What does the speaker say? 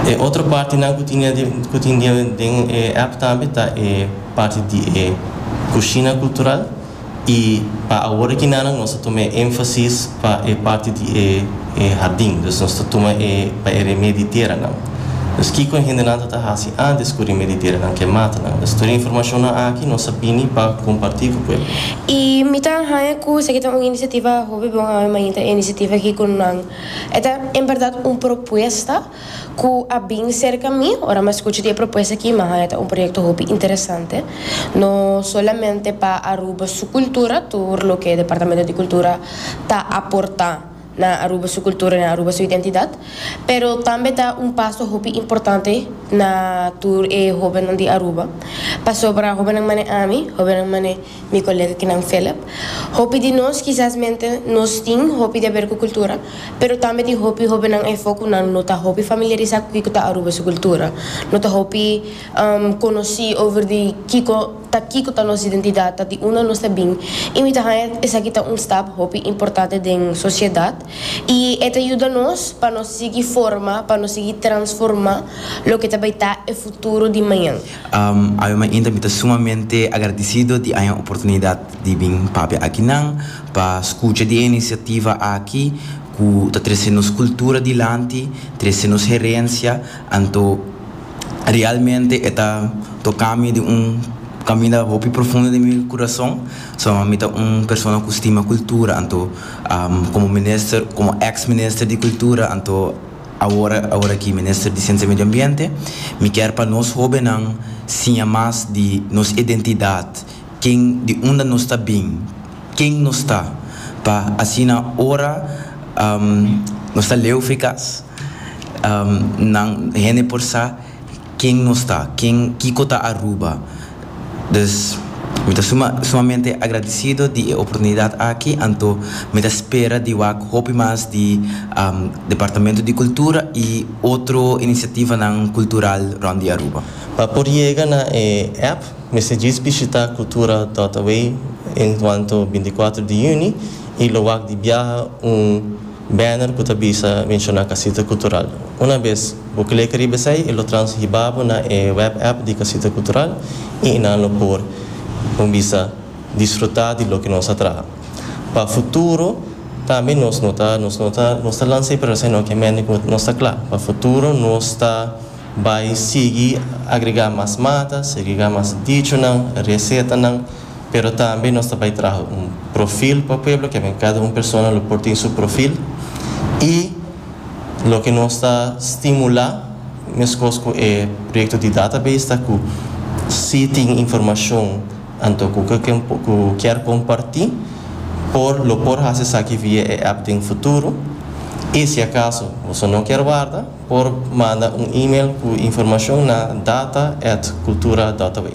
E otro partinan ku tin ku tin den e app tambe ta e parti di e kushina kultural i pa awor aki nan nos ta tuma e énfasis pa e parti di e e hardin dus nos ta tuma e pa e remé di teranan. Dus kiko e hendenan ta ta hasi antes ku remé di teranan ke mata nan? Dus tur e informashonnan aki nos a bini pa kompartí ku pueblo. I mi ta haña ku esaki ta un inisiativa hopi bon haña mainta e inisiativa aki ku nan. E ta en berdad un propuesta cu a bin cerca mi, ora m'a scucha di e propuesta aki m'a haña ta un proyecto hopi interesante, no solamente pa Aruba su cultura, tur loke Departamento di Cultura ta aporta na Aruba su cultura y na Aruba su identidad, pero tambe ta un paso hopi importante na tur e hobennan di Aruba, pasobra hobennan manera ami, hobennan manera. Mi colega Knan Phillip, Hopi di nos kisas mente nos tin hopi di haber cu cultura, pero tambe tin hopi hobennan efo cu nan no ta hopi familiarisa cu kico ta Aruba su cultura, no ta hopi conoci over di kico ta kico ta nos identidad, ta di unda nos ta bin y mi ta haya esaki ta un stap hopi importante den sociedad y e ta yuda nos pa nos sigui forma, pa nos sigui transforma loke ta bay ta e futuro di mañan. Awe mainta mi ta sumamente agradisido di haña oportunidat di bin papia aki nan, pa skucha di e inisiativa aki ku ta trese nos kultura dilanti, trese nos herensia, anto realmente e ta toka mi den un kaminda hopi profundo den mi kurason, sama mi ta un persona ku stima kultura, anto komo minister, komo ex minister di kultura, anto. Awor, awor aki Minister di Siensia i Medio Ambiente, mi kier pa nos hobennan siña mas di nos identidat, ken, di unda nos ta bin, ken nos ta, pa asina ora nos ta leu frikas, nan, hende por sa ken nos ta, ken, kiko ta Aruba. Dus, mi ta suma, sumamente agradecido di e oportunidad aki, anto mi ta spera di wak hopi mas di Departamento di Cultura y otro iniciativanan cultural rond di Aruba. Pa por yega na e app mester djis bishita Cultura Dot Away en cuanto binticuatro di juni y lo wak di biaha un. Banner cu ta bisa menciona Casita Cultural. Una bes bo clica riba esey e lo trans hiba bo na e web app di Casita Cultural y e nan lo por, con bisa, disfruta di loke nos a traha. Pa futuro tambe nos no ta nos no ta nos ta lansa e proyecto esey no kiamente cu nos ta cla pa futuro nos ta bay sigui agrega mas mata, segregar mas dichonan, recetanan Pero tambe nos ta bai traha un profil pa pueblo, ke men kada un persona lo por tin su profil, y loke nos ta stimula meskos ku e proyekto di database ta ku si tin informashon anto ku ku kier komparti por lo por hasi esaki via e app den futuro, y si akaso boso no kier warda por manda un email ku informashon na data@cultura.wa.